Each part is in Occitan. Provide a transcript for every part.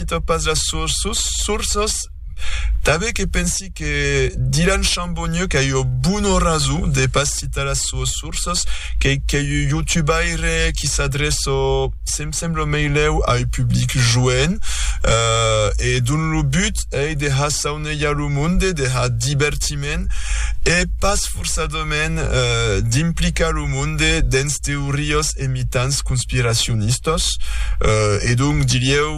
Cito pas las sources, tanben que pensi que Dylan Chambonnieu qu'a ua bona rason de pas citar las soas sources, qu'ei qu'ei un youtubaire qui s'adreça, se'm sembla meilèu a un public joen, e dont lo but ei de har saunejar lo monde, de har divertiment e pas forçadament d'implicar lo monde dens teorias e mitans conspiracionistas e donc dirieu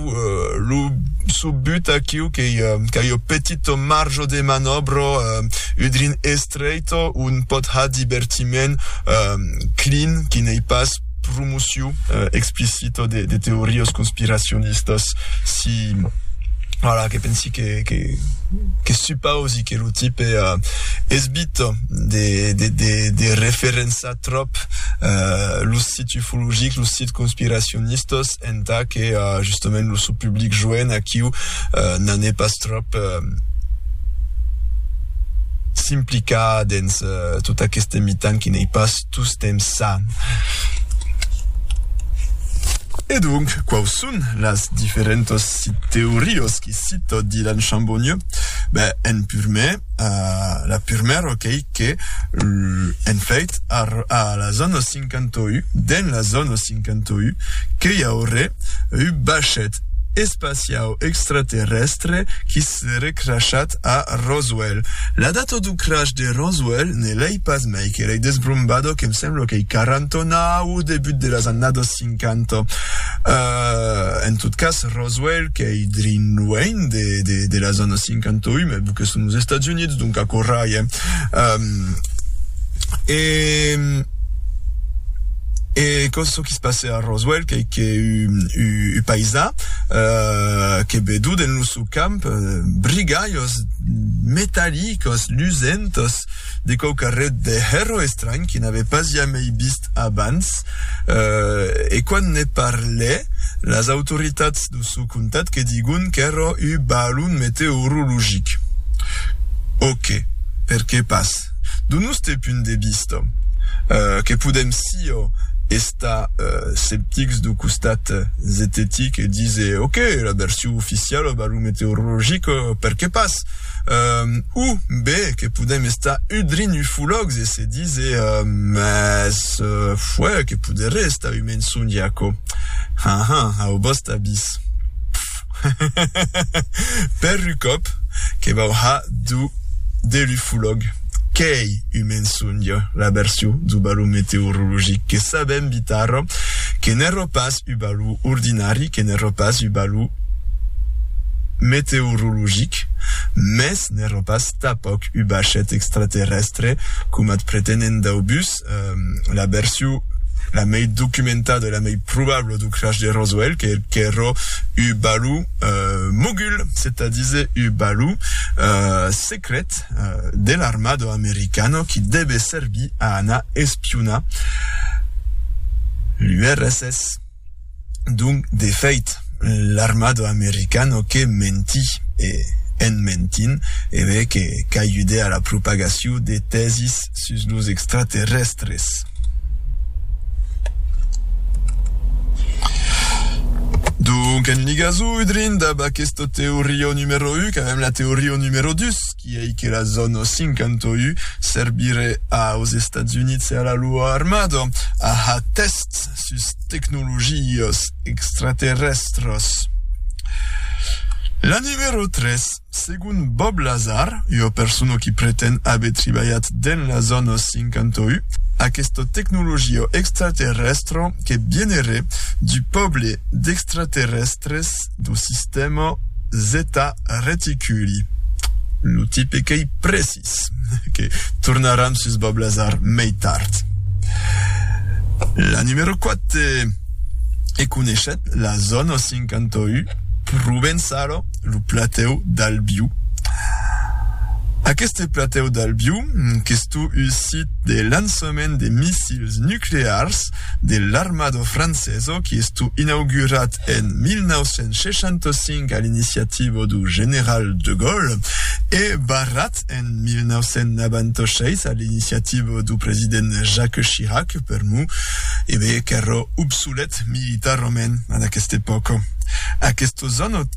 lo çò but aquiu qu'ei qu'ei ua petita marja de manòbra udrin estreita ont pòt har divertiment clean qui n'ei pas promocion explicita de de teorias conspiracionistas si voilà que pensi que que que supausi que lo tipe esbita de de de de referençar tròp los sits ufologics los sits conspiracionistas entà que justament lo sò public joen aquiu n'en è pas tròp s'implicar dens tot aqueste mitan qui n'ei pas tostemps ça. E donc, quaus son las diferentas teorias que cita Dylan Chambonnieu? Ben, en purmèr, la purmèra qu'ei que, en fait, a la zòna 51, dens la zòna 51, que i aurè un bachet espaciau extraterrèstre qui Seré crashat a Roswell. La data dau crash de Roswell ne l'ei pas mai que l'ei desbrombada que'm sembla qu'ei 40 ans au debut de las annadas 50. En tot cas, Roswell qu'ei drin luenh de las annadas 58, mai bu que son los Estats Units, donc aquò rai, eh? E e quò çò qui se passè a Roswell qu'ei qu'u paisà que bedut en lo camp, brigalhos metallicos lusentos de quauquarret de hèro estranh que n'avè pas jamei vist abans, e quand ne parlè, las autoritats do sò comtat que digon qu'èra uu balon meteorologic. Ok, perqué pas? Do nòste punt de vista, que podèm siá estar Tà sceptics dau costat zetetic dise ok, la version oficiala val lo meteorologic per que pas? U be que podèm estar udrint ufològs e se dise mès fuèi que poderé estar un mensonge aquò? Haha, au vòste avís. Per lu còp que vau ha du de lu fulòg, qu'ei un mensonge la version du balon meteorologic, que sabèm bitar que n'èro pas u balon ordinari, que n'èro pas u balon meteorologic, mès n'èro pas tapòc u bachet extraterrèstre, coma t pretenen dau bus. la version la mei documentada e la mei probabla dau crash de Roswell, que qu'èra un balon mogul, c'est à dire un balon secret de l'armada americana qui devait servir a anar espionar l'URSS. Donc, d'efèit, l'armada americana que menti, e, en mentint, evé que qu'ajudè a la propagacion de tèsis sus los extraterrèstres. Donc, en ligasor udrint dab aquesta teoria numero un, qu'avèm la teoria numero dus, qui ei que la zòna 51 servirè aus Estats Units e a la loa armada, aha, test, sus tecnologias extraterrèstras. La numero 3, segon Bob Lazar, ua persona qui pretend aver tribalhat dens la zòna 51, aquesta tecnologia extraterrèstra que vieneré du pòble d'extraterrèstres do sistèma Zeta Reticuli, lo tipe qu'ei prèsi. Paris, que tornaràn sus Bablasar mei tard. La numero 4 e coneishèt la zòna 51 Provensalo, lo platèu d'Albiu. Aqueste platèu d'Albiu, qu'es tot un sit de lançament de missils nuclears, de l'armado franceso qui estu inaugurat en 1965 a l'iniciativo du general de Gaulle e barrat en 1996 a l'iniciativo du president Jacques Chirac, per mu, ebe, qu'èra obsolet militarament en aquesta epòca. Aquestos anòt